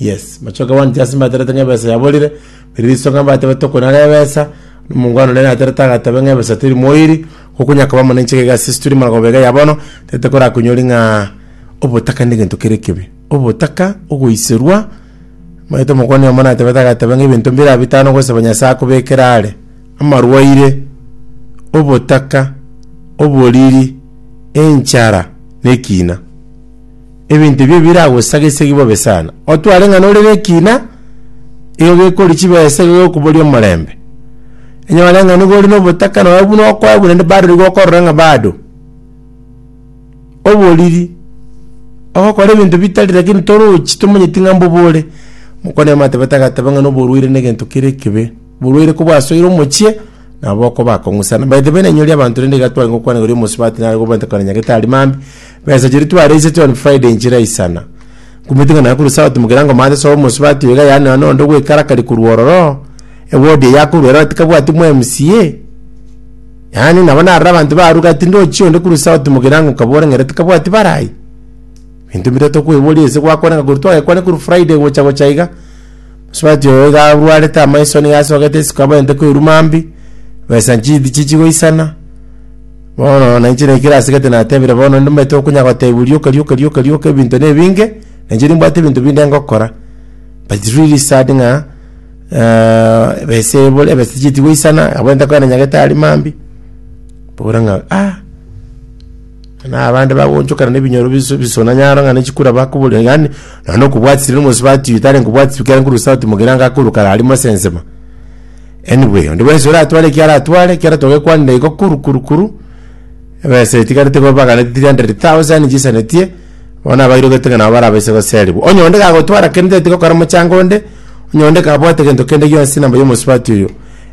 Yes, machoka one just mbaterete ng'a ebesa yaborire, riria riso ng'a mbatebe tokonara ebesa, omongwana oria naterete agatebe ng'a ebesa teri moiri, okonya koba muna inche gega ase esituri magoba iga ya bono, tete korakonyori ng'a obotaka negento kere ekebe. Obotaka, ogoiserwa, omanyete omokoni oyomo natebete agatebe ng'a ebinto mbire aa bitano ogosaba Nyasaye akobekere are, amarwaire, obotaka, oboriri, enchara, na ekina. Ebinto ebio biragosagesegi bobe sana. Otware ng'a nore nekiina, igo gekori chibesa igo gekobori omorembe. Enyore ng'a nigo ore nobotaka nonya buna okoegwa naende barori gokorora ng'a bado oboriri ogokora ebinto bitari lakini torochi tomanyeti ng'a mbobore. Mokwana yamate batagateba ng'a noborwaire negento kere ekebe. Oborwaire kobwasoire omochie, nabo okoba kong'usana. By the way nainyori abanto rende iga tware gokwana igoro ya omosubati nare gobwate kona nyagetari mambia, Besa chiria twareise John Friday nchira isana. Nkumitiga naye korwa South Mugirango Maths obe omosubati oiga yaani nonya nonde ogwekarakari korwa ororo, eward eye akorwa erora tikabwati mo MCA. Yaani nabo narora abanto baruga ati ndochie onde korwa South Mugirango nkabore ng'ere tikabwati barai. Binto bire tokweboria ase gwakoreka korwa twagekwane korwa Friday gocha gocha iga. Mosubati oyo iga arwarete amaiso nigo asogete isiko abwenerete koiruma mbi. Besa nchidi chichigoisana. Bono nainche na ekero asigete natebire, bono nimbete okonya gotebiwa rioka rioka rioka rioka ebinto nebinge, nainche nimbwate ebinto binde ngokora, but it's really sad ng'a eh, ebese ebore ebese tichieti goisana, abwo ntakogenda nyagete aria mambia, mbore ng'a ah, na abande bagoonchokana na ebinyoro bisu bisuna nyaro ng'a ne chikura bakoboria yaani naende okobwatia riria omosubati oyo tari nkobwatia ekero nkorwa esauti mogirango akoruka aria mosensema. Anyway, onde bwensi oratware eki aratware, ekero togekwanire igo kuru kuru kuru, ebesa etigarete igo babaganete 300,000 chisanetie, bono abairogete ng'a nabo barabaise goserigwa. Onye onde gagotwara kende teti gokora mochango onde, onye onde kabwate gento kende gionsi na moyomosubati oyo,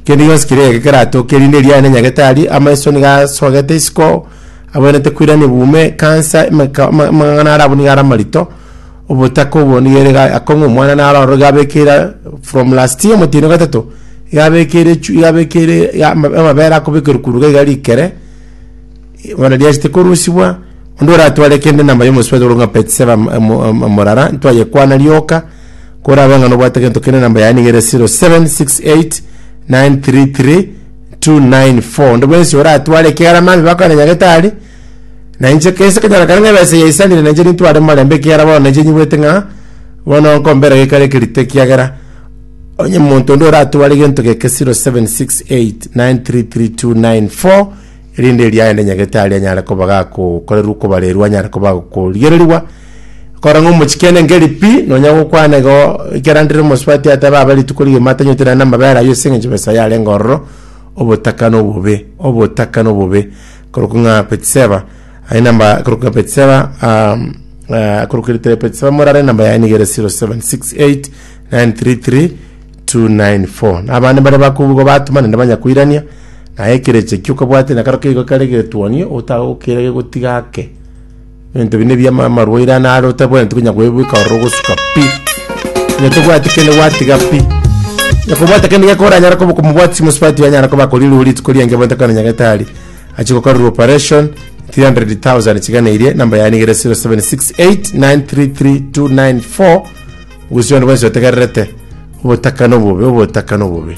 kende gionsi keria egeke keratoke, erinde eria aye na nyagetari, amaiso nigo asogete isiko, abwenerete koirania buume, ekansa, emeka- ama- amang'ana are abwo nigo are amarito, Obotaka obo nigo ere ga- akong'u omwana naro aro iga abekeire from last year omotino gatato iga abekeire echu iga abekeire iga ama- amabere akobekerwa korwa iga iga rikere bono riachete korosibwa onde oratware kende enamba ya omosubati ore ng'a peti saba mo- mo- mo- morara ntwayekwana rioka korabe ng'a nobwate gento kende enamba yaye niga ere 0768933294 onde bwensi oratware ekegarama abe bakore nyagetari. Na inche kese ekenyarokano ng'a ebesa eye yaisanire, na inche nintware morembe, ekiagera bono inche nyigwete ng'a bono nkombera gekari ekerito, ekiagera onye monto onde oratware gento geke 0768933294 erinde eria aye ndenyagete aria anyare koba gakokorerwa okobarerwa anyare koba agokorigererigwa kora ng'a omochiki aende nkeri pi, nonya gokwana igo ekero andere omosubati atabe abe rituko rigima atanywote naende amabere ayio ase eng'encho besa yarenge ororo, obotaka na obobe, obotaka na obobe. Korokwa ng'a Beti-Seba, aye namba korokwa ng'a Beti-Seba, um, uh, korokwa eritare Beti-Seba morare namba yaye niga ere 0768933294 na abande mbare bakobugwa batuma naende banyakoirania naye ekerecha ekio okabwate na karo keigo kare getuonio otagokeire gegotiga ake Ebinto ebi nebi ama amarwaire ane are otabwenereti konya koebeka ororo ogosuka pi. Onye tobwati kende gwatiga pi. Onye kobwate kende geko oranyare koba komobwati chimosubati onyare koba akorirwe rituko riange bonto ekero nyagetari achia gokorerwa operation 300,000 chiga na eria enamba yaye niga ere 0768933294 gusii onde bwensi otegererete obotaka na obobe obotaka na obobe.